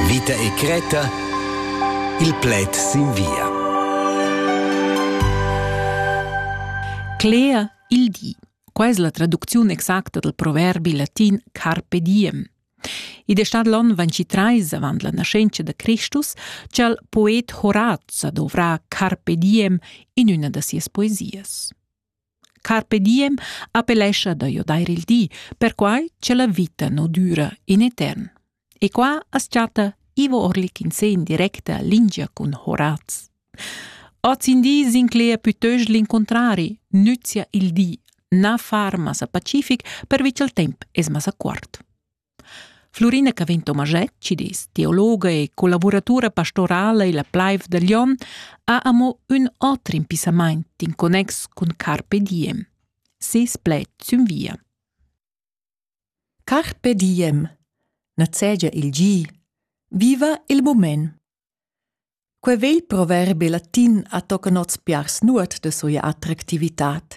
Vita e Creta Il pled sin via. Cler il di. Qua es la traducziun exacta dal proverbi latin carpe diem. Id è stat l'on 23 avant la nascenza da Christus ch'al poet Horaz dovrà carpe diem in una da sias poesias. Carpe diem appellescha da jo dair il di, perquai cha la vita nu düra in etern. E qua as chatta Ivo Orlik in se in directa lingia cun Horaz. Oz in di s'inclegia pütöst l'incuntrari, nüzia il di, na far massa pacific pervi cha'l temp es massa cuort. Flurina Cavin Tomaschett, cidis, teologa e collavuratura pastorala illa plaiv da Glion, ha amo ün oter impissamaint in connex cun Carpe Diem. Ses pled sün via. Carpe Diem. Nazegia il gi. Viva il mument. Quei vegl proverbi latin ha tocan oz piars nuot da sia attractivitad.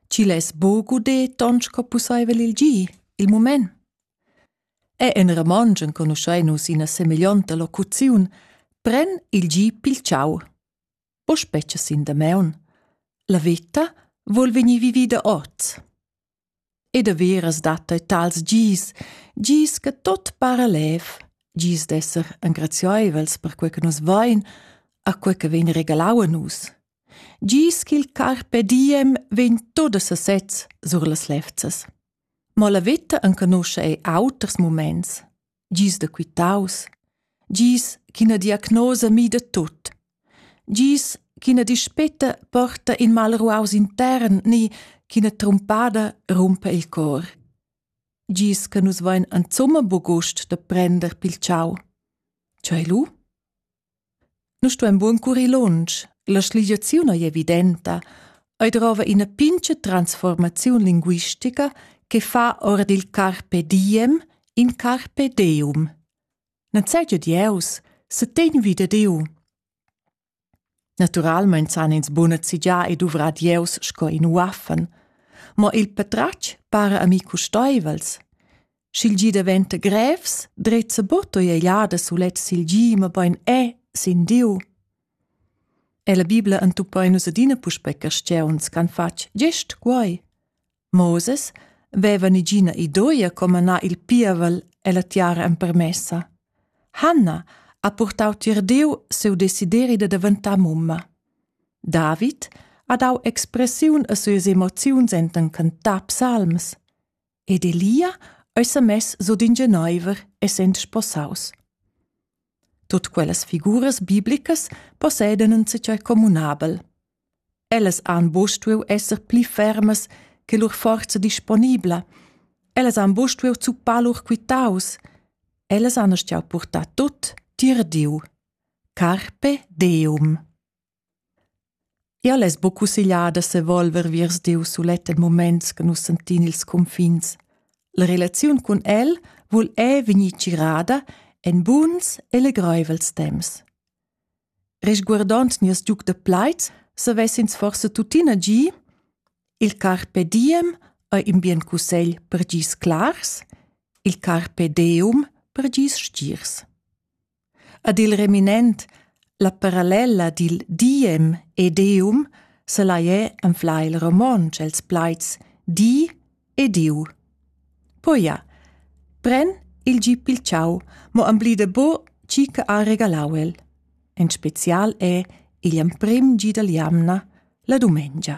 Chi less buca udir ton sco pusseivel il gi, il mument? E en romontsch enconuschein nus ina semeglionta locuziun pren il gi pil ciau. Po spetga sin damaun. La veta vol vegnir vivida oz. E daveras dat ei tals gis, gis che tot para lev, gis d'esser engrazieivels per quei che nus vein, a quei che vegn regalau a nus. Gis ch'il carpe diem vegn tot a sesez sur las levzas. Mo la veta enconuscha ei auters muments. gis da quitaus, gis ch'ina diagnosa mida tut, gis ch'ina dispeta porta in malruaus intern ni ch'ina trumpada rumpa il cor. Gis che nus vein insumma buc gust da prender pil tschau. Cei lu? Nu stuain buon curir lunsch, la schligiaziun ei evidenta, ei drova ina pincha transformaziun linguistica che fa ora dil carpe diem in carpe deum. Non sai giu Dieus, se tegn vita Dieu. Naturalmein san ins buna zigià e duvrar Dieus sco in uaffen, ma il patratg para a mi custoivels. Sch'il gi daventa grevs, drizza buto egliada sulet sil gi, mabain è sin Diu. E la Bibla entuppa nus adina puspè castiuns ch'han fatg gest quai. Moses veva nigina idoia come anar il pievel e la tiara empermessa. Hanna ha purtau tier Diu siu desideri da daventar mumma. David ha dau expressiun a sias emoziuns enten cantar psalms. ed Elia ei semess sut in geneiver, essend sposaus. Tut quellas figuras biblicas possedan in zatgei communabel. Ellas han buca stuiu esser pli fermas che lur forza disponibla. Ellas han buca stuiu zuppar lur quitaus. Ellas han stuiu purtar tut tier Diu. Carpe Deum. Jau less buc cussegliar da sevolver viers Diu sulet en muments che nus sentin ils cunfins. La relaziun cun el vul è vegnir tgirada en buns e legreivels temps. Resguardond nies giug da plaid, savessins forse tuttina gi il carpe diem ei in bien cussegl per gis clars, il carpe deum per gis stirs. Ad il reminent la parallella dil diem e deum selai er anflar il romontsch els plaids di e diu. Poi ja, pren il gi pil ciau, mo amblida bo chi che ha regalau el. En special è igl emprim gi dall jamna, la dumengia.